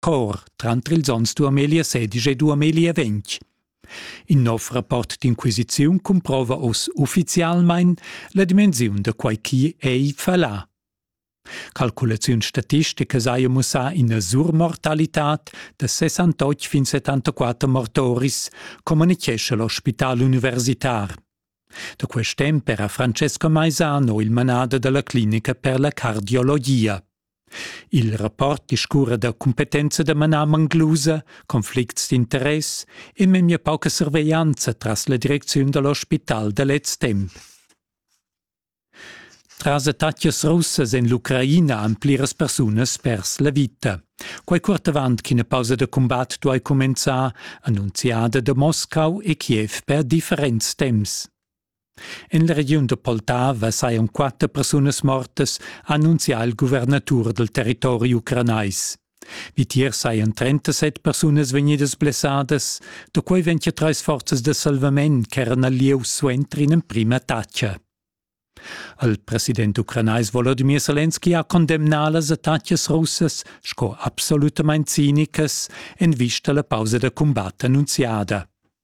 Cor tranter ils onns duameglia sedisch e duameglia ventg. In nov rapport d'inquisiziun cumprova oz uffizialmein la dimensiun da quai chi ei fallà. Calculaziun statistica saja mussà ina surmortalitad da 68 fin 74 mortoris, communichescha l'ospital universitar. Da quest temp era Francesco Maisano il manader dalla clinica per la cardiologia. Il rapport discurra da cumpetenza da manar manglusa, conflicts d'interess e memia pauca surveglianza tras la direcziun dall'ospital da lez temp. Tras attacas russas en l'Ucraina han pliras persunas pers la vita. Quai curt avant ch'ina pausa da cumbat duai cumenzar, annunziada da Moscau e Kiev per differents temps. En la regiun da Poltava sajan quatter persunas mortas, annunzia il guvernatur dal territori ucranais. Vitier sajan 37 persunas vegnidas blessadas, da quai vegn che trais forzas da salvament ch'eran al lieu suenter in emprima tatscha. Il president ucranais Volodymyr Selenski ha condemnà las attacas russas sco absolutamain cinicas en vista alla pausa da cumbat annunziada.